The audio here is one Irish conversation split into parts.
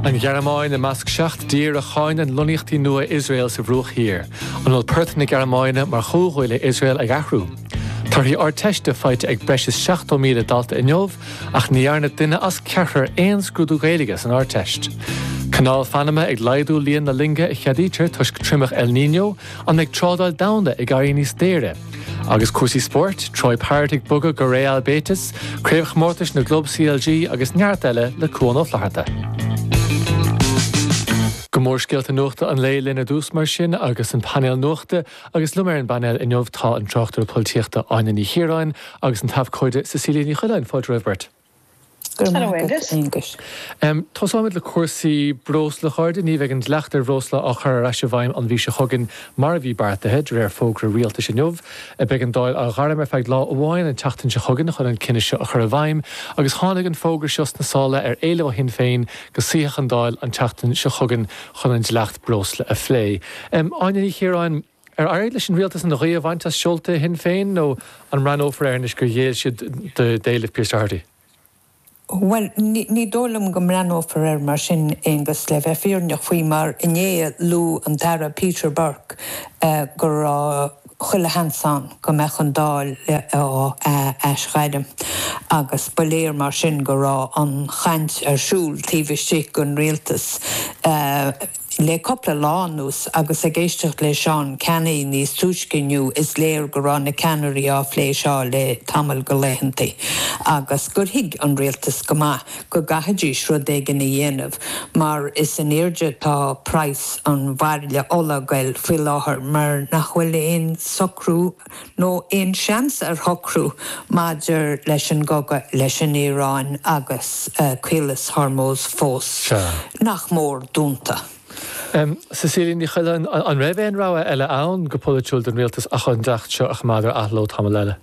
An Ghearmáin i measc seacht dtír a cháineann lonnaíochtaí nua Iosrael sa Bhruach Thiar. An bhfuil port na Gearmáine mar chomhghuaillí Iosrael ag athrú? Torthaí Ardteiste faighte ag breis is 70,000 dalta inniu ach ní dhearna duine as ceathrar aon scrúdú Gaeilge san Ardteist. Canáil Phanama ag laghdú líon na loinge a cheadaítear toisc triomach El Niño An mbeidh trádáil domhanda ag éirí níos daoire? Agus cúrsaí spóirt, Troy Parrott ag bogadh go Real Betis, Craobhchomórtais na gClub CLG agus neart eile le Cuán Ó Flatharta. Go mórscéalta nuachta an lae linn ar dtús mar sin agus an painéal nuachta agus liom ar an bpainéal inniu tá an tráchtaire polaitíochta Áine Ní Chiaráin agus an t-abhcóide Cecilia Ní Choileáin. Fáilte romhaibh beirt. Go raibh maith agat, Aonghus. Tosóimid le cúrsaí breosla, a chairde. Ní bheidh an dleacht ar bhreosla á chur ar ais i bhfeidhm an mhí seo chugainn mar a bhí beartaithe, de réir fógra rialtais inniu. Beidh an Dáil á ghairm ar feadh lá amháin an tseachtain seo chugainn chun an cinneadh seo a chur i bhfeidhm agus tháinig an fógra seo sna sála ar éileamh ó Shinn Féin go suífeadh an Dáil an tseachtain seo chugainn chun an dleacht breosla a phlé. Áine Ní Chiaráin. Ar éirigh leis an rialtas an ghaoth a bhaint as seolta Shinn Féin nó an mbreathnófar air anois gur ghéill siad d'éilimh Pearse Doherty? Bhuel, ní dóigh liom go mbreathnófar air mar sin, Aengus, le bheith fírinneach faoi mar inné a luaigh an tAire Peter Burke go raibh chuile sheans ann go mbeadh an Dáil á aisghairm agus ba léir mar sin go raibh an chaint ar siúl taobh istigh den rialtas. Le cúpla lá anuas agus ag éisteacht le Seán Canney níos túisce inniu is léir go raibh na ceannairí á phlé seo le tamall de laethanta agus gur thuig an rialtas go maith go gcaithfidís rud éigin a dhéanamh mar is in airde atá praghas an bhairille ola ag dul faoi láthair mar nach bhfuil aon socrú nó aon seans ar shocrú maidir leis an gcogadh leis an Iaráin agus Caolas Hormuz fós, nach mór, dúnta. Cecilia Ní Choileáin, An raibh aon rogha eile ann, go polaitiúil, don rialtas ach an dleacht seo a choimeád ar athló tamall eile?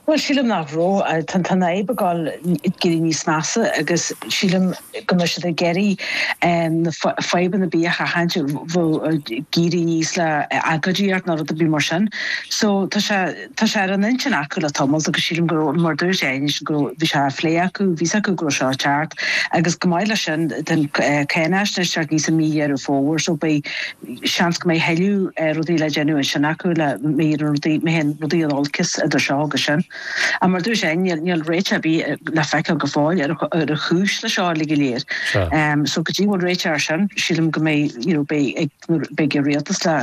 Bhuel sílim nach raibh. Tá an fhadhb ag dul ag éirí níos measa agus sílim go mbeidh siad ag iarraidh fadhbanna ar bith a sheachaint, ag éirí aníos le agóidíocht nó rud ar bith mar sin. So tá sé tá sé ar an intinn acu le tamalt agus sílim go raibh, mar a dúirt sé anois go raibh, bhí sé á phlé acu, bhí 's acu go raibh seo ag teacht agus chomh maith leis sin, tá an cháinaisnéis ag teacht aníos i mí Dheireadh Fómhair so beidh, seans go mbeidh thuilleadh rudaí le déanamh ansin acu le má éiríonn rudaí, má théann rudaí in olcas idir seo agus sin. Ach mar a dúirt Áine, níl, níl réiteach ar bith le feiceáil go fóill ar ar an chúis le seo uilig go léir. So go dtí go bhfuil réiteach ar sin, sílim go mbeidh, you know, beidh ag, beidh ag an rialtas le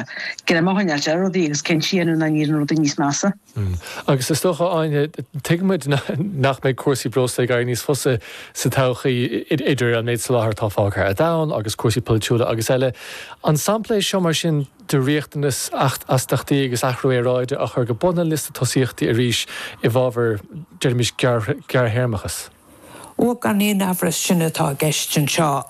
greim a choinneáilt ar rudaí agus cinntí a dhéanamh nach n-éiríonn rudaí níos measa. Mm. Agus is dócha, Áine, tuigeann muid nach mbeidh cúrsaí breosla ag éirí níos fusa sa todhchaí, idir an méid soláthair atá fágtha ar domhan agus cúrsaí polaitiúla agus eile. An sampla é seo, mar sin, de riachtanas astaíochtaí agus athrú aeráide a chur go bun an liosta tosaíochtaí arís i bhfabhar, deirimis, gearrthéarmachas? Bhuel, gan aon amhras sin atá i gceist anseo,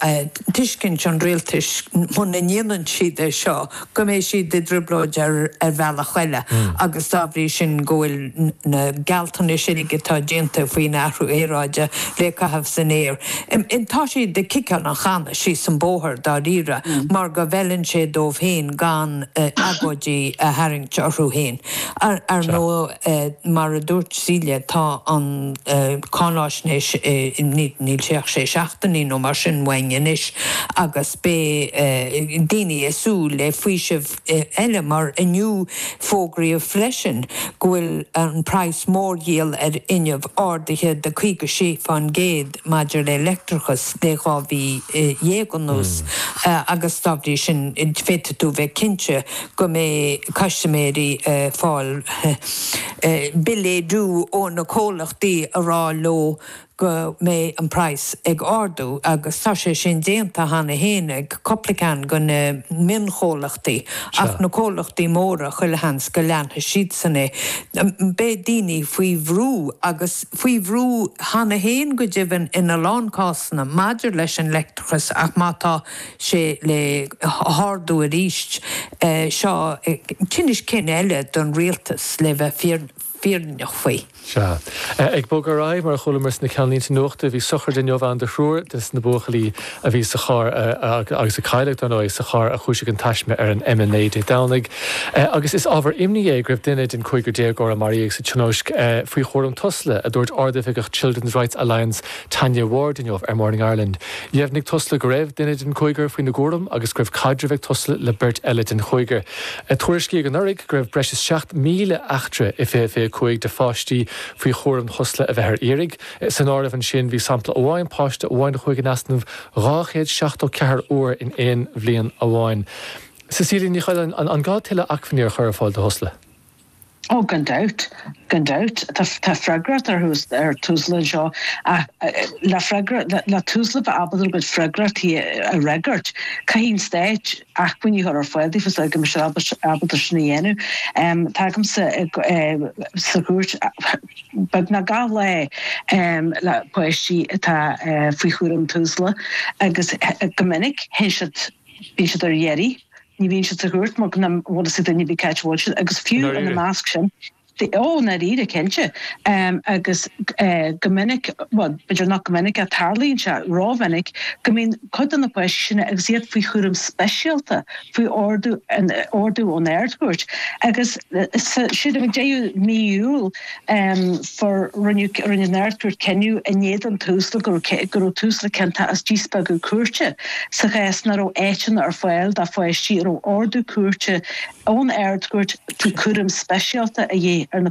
tuigeann an rialtas muna ndéanann siad é seo go mbeidh siad i dtrioblóid ar bhealach eile agus dá bhrí sin go bhfuil na gealltanais uilig atá déanta faoin athrú aeráide le caitheamh san aer. Tá siad ag ciceáil an channa síos an bóthar dáiríre mar go bhfeileann sé dóibh féin gan agóidí a tharraingt orthu féin. Ar ndóigh. Mar a dúirt Cecilia tá an cháinaisnéis, níl sé ach sé seachtainí nó mar sin uainn anois agus beidh daoine ag súil le faoiseamh eile mar inniu fógraíodh freisin go bhfuil an praghas mórdhíol ar fhuinneamh ardaithe de 56 fán gcéad. maidir le leictreachas le dhá mhí dhéag anuas agus dá bhrí sin féadfaidh tú bheith cinnte go mbeidh custaiméirí ag fáil billí ó na comhlachtaí ag rá leo go mbeidh an praghas ag ardú agus tá sé sin déanta cheana féin ag cúpla ceann de na mionchomhlachtaí ach na comhlachtaí móra chuile sheans go leanfaidh siadsan é. Beidh daoine faoi bhrú agus. faoi bhrú cheana féin go deimhin in a lán cásanna maidir leis an leictreachas ach má tá sé le hardú arís seo tinneas cinn eile don rialtas le bheith fírinneach faoi. Sea. Ag bogadh ar aghaidh, mar a chualamar sna ceannlínte nuachta, bhí sochraid inniu ann do thriúr des na buachaillí a bhí sa charr agus a cailleadh, dar ndóigh, sa charr a chúisigh an taisme ar an M9 Dé Domhnaigh agus is ábhar imní é go raibh duine den chúigear déagóir a maraíodh sa tionóisc faoi chúram Tusla, a dúirt Ard-Oifigeach Children's Rights Alliance Tanya Ward inniu ar Morning Ireland. Dheimhnigh Tusla go raibh duine den chúigear faoina gcúram agus go raibh caidreamh ag Tusla le beirt eile den chúigear. Tuairiscíodh anuraidh go raibh breis is 7,000 eachtra i 2025 de pháistí faoi chúram Thusla a bheith ar iarraidh. San áireamh ansin bhí sampla amháin, páiste amháin a chuaigh in easnamh dhá chéad seachtó ceathair uair in aon bhliain amháin. Cecilia Ní Choileáin, an gá tuilleadh acmhainní a chur ar fáil do Thusla? Oh gan dabht, gan dabht. Tá freagracht ar ar Thusla anseo ach le freagra, le Thusla bheith ábalta a gcuid freagrachtaí a fhreagairt caithfidh an Stát acmhainní a chur ar fáil daofa sula go mbeidh siad ábalta sin a dhéanamh. Tá mise sa chúirt, Beagnach gach lá le páistí atá faoi chúram Tusla agus go minic théann siad, bíonn siad ar iarraidh, ní bhíonn siad sa chúirt mar nach bhfuil fhios ag duine ar bith cá háit a bhfuil siad agus fiú ina measc sin, ó i ndáiríre, cinnte agus go minic, bhuel b'fhéidir nach go minic ach tarlaíonn sé ró-mhinic go mbíonn cuid de na páistí sin agus iad faoi chúram speisialta faoi ordú ón Ard-Chúirt agus sa 16ú mí Iúil rinne an Ard-Chúirt cinneadh in éadan Tusla go raibh Tusla ciontach as díspeagadh cúirte sa chás nach raibh áiteanna ar fáil do pháistí a raibh ordú cúirte ón Ard-Chúirt faoi chúram speisialta a dhíth ar na